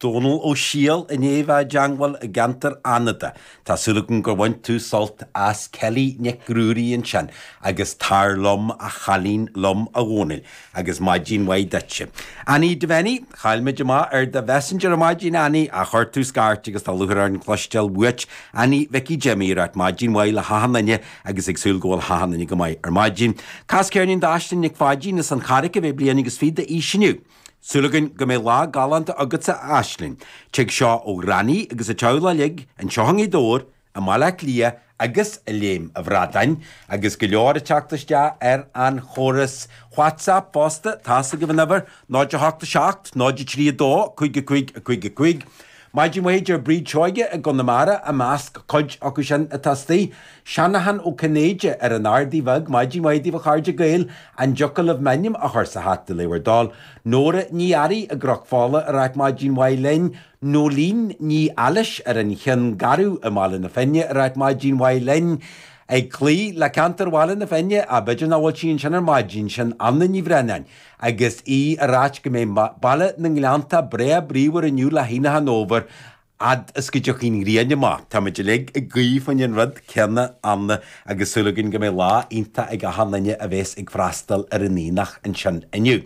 Dónal Ó Siadhail i ndiaidh a dteangmháil i gceantar Fhánada. Tá súil agam gur bhain tú sult as Ceilí Nic Ruairí ansin agus Tar Liom a Thaiscidh Liom a Dhónail agus maidin mhaith duitse, Annie Devenny, chaill muid amach ar do mhessenger ar maidin Annie ach chuir tú scairt agus tá lúcháir orainn cluinstean uait. Annie Mhicí Jimmy, ag ráit maidin mhaith le hachan duine agus ag súil go bhfuil achan nduine go maith ar maidin. Cas ceirnín d'Aisling Nic Pháidín as an Charraic a bheidh bliain agus fiche d'aois inniu. Súil againn go mbeidh lá galánta agatsa a Aisling. Tig seo ó Ghranny agus a teaghlaigh uilig anseo i nGaoth Dobhair, i mBaile Átha Cliath agus i Léim a' Bhradáin agus go leor ag teacht isteach ar an chóras Whatsapp fosta, tá's agaibh an uimhir, 08 7 03 2 5 5 5 5. Maidin mhaith a deir Bríd Seoige i gConamara, i measc cuid acu sin atá istigh, Seanachán Ó Cinnéide ar an Ardaidh Bheag, Maidin mhaith daoibh a chairde Gaeil, an dtiocfadh libh m'ainm a chur sa hata, le bhur dtoil? Nóra Ní Fhearraigh i gCnoc Fola ag ráit maidin mhaith linn, Nóilín Ní Ailis ar an Chionn Gharbh i mBaile na Finne ag ráit maidin mhaith linn, ag cloí le ceantar Bhaile na Finne, ach b'fhéidir nach bhfuil sí ansin ar maidin, sin Anna Ní Bhraonáin Agus í ag ráit go mbeidh Baile na nGleannta breá bríomhar inniu le hAonach an Fhómhair, fhad is go dtiocfaidh an ghrian amach, táimid uilig ag guí faoin rud céanna Anna agus súil againn go mbeidh lá iontach ag achan duine a bhéas ag freastal ar an Aonach ansin inniu.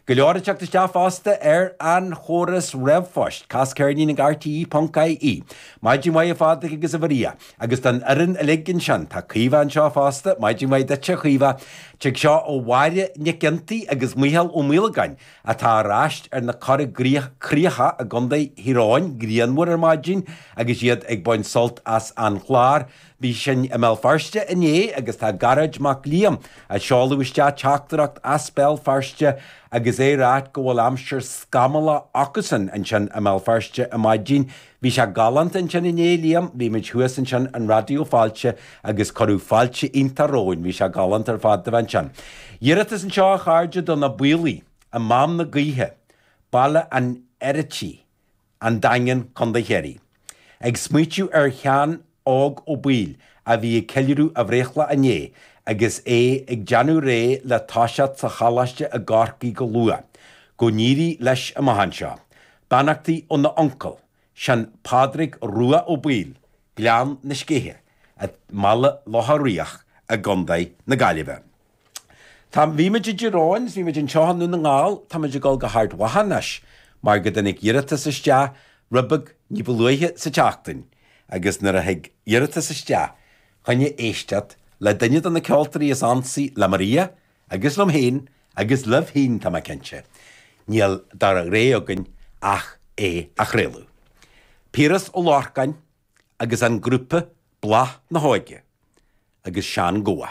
Go leor ag teacht isteach fosta ar an chóras ríomhphost, cas ceirnín ag rte ponc ie. Maidin mhaith a Phádraig agus a Mharia. Agus don fhoireann uilig ansin, tá Caoimhe anseo fosta, maidin mhaith duitse a Chaoimhe. Tig seo ó Mháire Nic Fhionntaigh agus Micheál Ó Maolagáin, atá ar ais ar na Corrchríocha i gContae Thír Eoghain, grianmhar ar maidin agus iad ag baint sult as an chlár. Bhí sinne i mBéal Feirste inné agus tá Gearóid Mac Liam ag seoladh isteach teachtaireacht as Béal Feirste agus é ag ráit go bhfuil aimsir scamallach acusan ansin i mBéal Feirste ar maidin. Bhí sé galánta ansin inné, a Liam, bhí muid thuas ansin i Raidió Fáilte agus cuireadh fáilte iontach romhainn, bhí sé galánta ar fad a bheith ansin. Iarratas anseo a chairde do na Baoilligh i Mám na Gaoithe, Baile an Fheirtéaraigh, An Daingean, Co. Chiarraí. Ag smaoitiú ar Sheán Óg Ó Baoill, a bhí ag ceiliúradh a bhreithlá inné agus é ag déanamh réidh le toiseacht sa choláiste i gCorcaigh go luath. Go n-éirí leis amach anseo. Beannachtaí óna uncail, Seán Pádraig Rua Ó Baoill, Gleann na Scéithe, i mBaile Locha Riach i gContae na Gaillimhe. Tá, bhí muid i dTír Eoghain is bhí muid anseo i nDún na nGall, tá muid ag dul go hArd Mhacha anois mar go dtáinig iarratas isteach rud beag ní ba luaithe sa tseachtain agus nuair a thig iarratas isteach choinne éisteacht le duine de na ceoltóirí is ansaí le Maria agus liom féin agus libh féin tá mé cinnte. Níl dadaí againn ach é a chraoladh. Piaras Ó Lorcáin agus an grúpa Bláth na hÓige agus Seán Gabha.